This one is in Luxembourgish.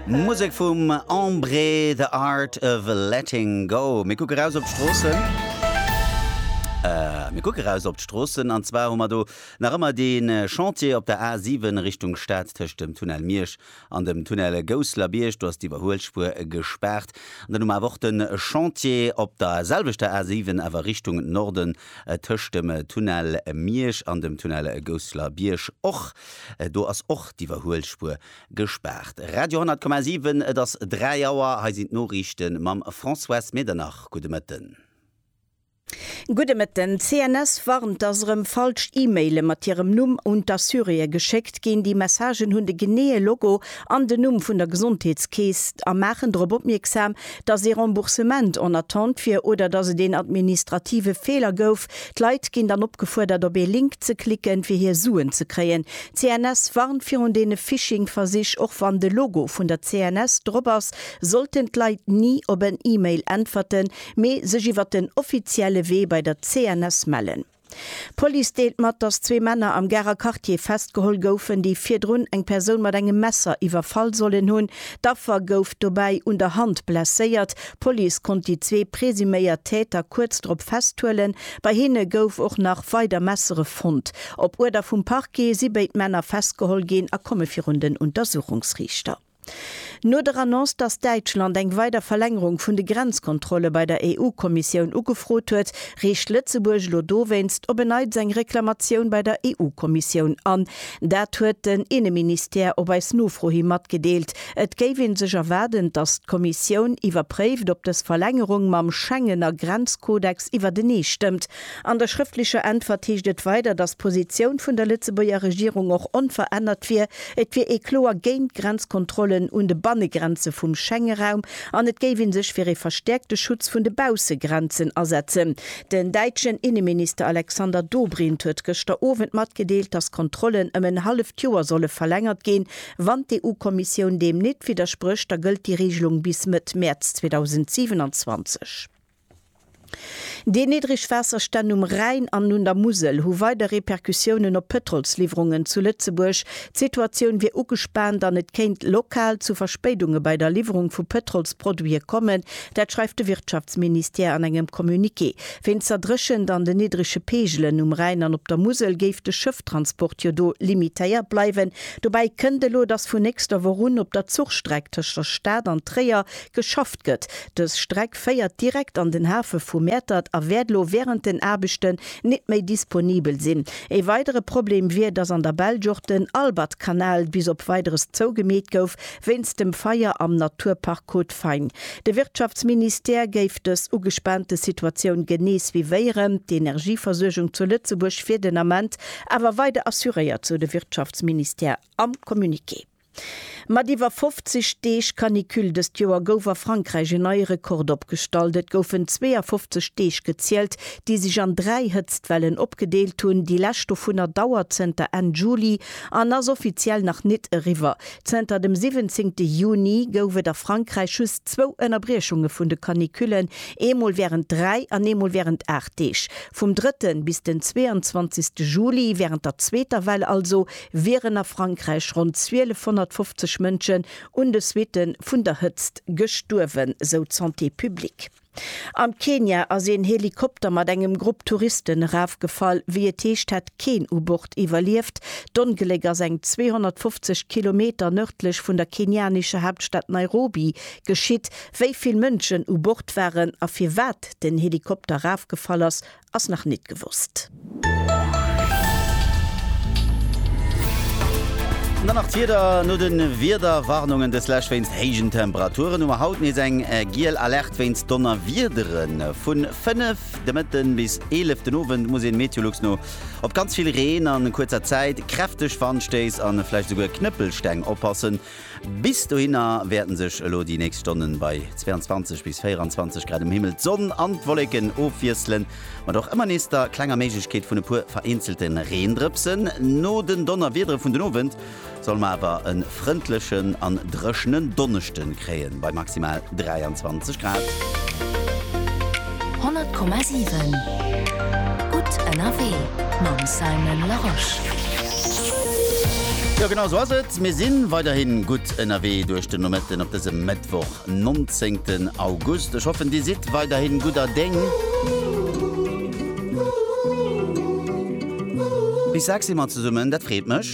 Musek vum Embré, The Art of Letting Go. Mir kucke raus op d'Stroossen. Mir kucke raus op d'Stroossen an zwar hu mer do nach ëmmer dee äh, Chantier op der A 7 Richtung Stad tëscht dem Tunnel Miersch an dem Tunnel Gousslerbiërg. Do ass d'Iwwerhuelspuer gespaart. An dann hu mer awer och de Chantier op der selwechter A 7, awer Richtung Norden, äh, tëscht dem Tunnel Miersch an dem Tunnel Gousslerbiërg och. Do ass och d'Iwwerhuelspuer gespaart. Radio 10,7, Et ass 3 Auer, hei sinn d'Noriichte mam Françoise Medernach. Gudde Mëtten. Gudde Mëtten. D'CNS warnt, dass erëm falsch E-Maile mat hirem Numm un d'Assuréeë geschéckt ginn. Déi Messagen hunn de geneeë Logo an den Numm vun der Gesondheetskeess a maachen drop opmierksam, dass ee Remboursement en attente wier oder dass et een administrative Feeler gouf, D'Leit ginn dann opgefuerdert op ee Link ze klicken fir hir Suen ze kréien. D'CNS warnt virun deene Phishing-Versich, och wann de Logo vun der CNS drop ass, sollten d'Leit ni op en E-Mail äntwerten, mee sech iwwer den offizielle Wee bei der CNS mellen. D'Police deelt mat, dass zwee Männer am Garer Quartier festgeholl goufen, déi virdrun eng Persoun mat engem Messer iwwerfall sollen hunn. D'Affer gouf dobäi un der Hand blesséiert D'Police konnt déi zwee presuméiert Täter kuerz drop festhuelen. Bei hinne gouf och nach weider Messere fonnt. Op Uerder vum Parquet si béid Männer festgeholl ginn a komme virun den Untersuchungsriichter. No der Annonce, datt Däitschland eng weider Verlängerung vun de Grenzkontrolle bei der EU-Kommissioun ugefrot huet, reecht Lëtzebuerg elo dowéinst op en Neits eng Reklamatioun bei der EU-Kommissioun an. Dat huet den Inneministère op eis Nofro hi matgedeelt. Et géif ee sech erwaarden, datt d'Kommissioun iwwerpréift, ob dës Verlängerung mam Schengener Grenzkodex iwwertenee stëmmt. An der schrëftlecher Äntwert heescht et weider, datt d'Positioun vun der Lëtzebuerger Regierung och onverännert wier, Et wier ee kloer géint Grenzkontrollen un de Bannegrenze vum Schengeraum an et géif ee sech fir ee verstäerkte Schutz vun de Baussegrenzen asetzen. Den däitschen Inneminister Alexander Dobrindt huet gëschter Owend matgedeelt, datt d'Kontrollen ëm en halleft Joer solle verlängert ginn, Wann d'EU-Kommissioun deem nit widdersprécht, da gëllt déi Reegelung bis Mëtt Mäerz 2027. Déi niddreg Waasserstänn um Rhäin an un der Musel hu weider Repercussiounen op d'Pëtrolsliwwerungen zu Lëtzebuerg. D'Situatioun wier ugespaant an et kéint lokal zu Verspéidunge bei der Liwwerung vu Pëtrolsproduite kommen. Dat schreift de Wirtschaftsministère an engem Communiqué. Wéinst der Dréchent an den niddrege Peegelen um Rhäin an op der Musel géif de Schëfftransport jo do limitéiert bleiwen. Dobäi kënnt elo, dass vun nächster Woch un op der Zuchstreck tëscht der Stad an Tréier geschafft gëtt. Dës Streck féiert direkt an den Hafe vu Mäertert a wäert elo wärend den Aarbechten nit méi disponibel sinn. Ee weidere Problem wier, dass an der Belsch och den Albertkanal bis op Weideres zougemeet gouf wéinst dem Feier am Naturpark Côte Fine. De Wirtschaftsministère géif dës ugespaante Situatioun genee suivéieren. D'Energieversuergung zu Lëtzebuerg wier den Ament awer weider assuréiert, sou de Wirtschaftsministère am Communiqué. Mat iwwer 50 Deeg Canicule dëst Joer gouf a Frankräich en neie Rekord opgestallt. Et goufen 52 Deeg gezielt, déi sech an dräi Hëtztwellen opgedeelt hunn. Déi lescht dovunner dauert zënter Enn Juli an ass offiziell nach nit eriwwer. Zënter dem 17 Juni gouf et a Frankräich just zwou Ënnerbriechunge vun de Canicullen, eemol wärend dräi an eemol wärend aacht Deeg. Vum drëtten bis den 22. Juli, wärend der zweeter Well also, wieren a Frankräich ronn 1250 Mënschen un de Suitte vun der Hëtzt gestuerwen, sou d'Santé publique. Am Kenia ass een Helikopter mat engem Grupp Touristen erafgefall. Wéi et heescht, hätt keen u Bord iwwerlieft. D'Ongléck ass eng 250 Kilometer nërdlech vun der kenianescher Haaptstad Nairobi geschitt. Wéi vill Mënschen u Bord waren a firwat den Helikopter erafgefall ass, ass nach nit gewosst. An dann nach d'Wieder, No de Wiederwarnungen deslescht wéinst héijen Temperaturen hu mer haut nees eng giel Alerte wéinst Donnerwiedere. Vu 5 de Mëtten bis 11 den Owend muss een Meteolux no op ganz vill Reen a kuerzer Zäit, kräfteg Wandstéiss a vläicht esouguer Knëppelsteng oppassen. Bis dohinner wäerten sech elo déi nächst Stonnen bei 22 bis 24 Grad um Himmel d'Sonn an d'Wolleken ofwiesselen, mat och ëmmer nees der klenger Méiglechkeet vun e puer vereenzelte Reendrëpsen. No den Donnerwiedere vun den Owend solle mer awer e frëndlechen an dréchenen Donneschde kréien, bei maximal 23 Grad. 100,7 Gutt ënnerwee mam Simon Larosche. Jo, genau sou ass et. Mir si weiderhi gutt ënnerwee duerch den Nomëtten op dësem Mëttwoch, 19 August. Ech hoffen, Dir sidd weiderhi gudder Déng. Bis 6 si mer zesummen, dat freet mech.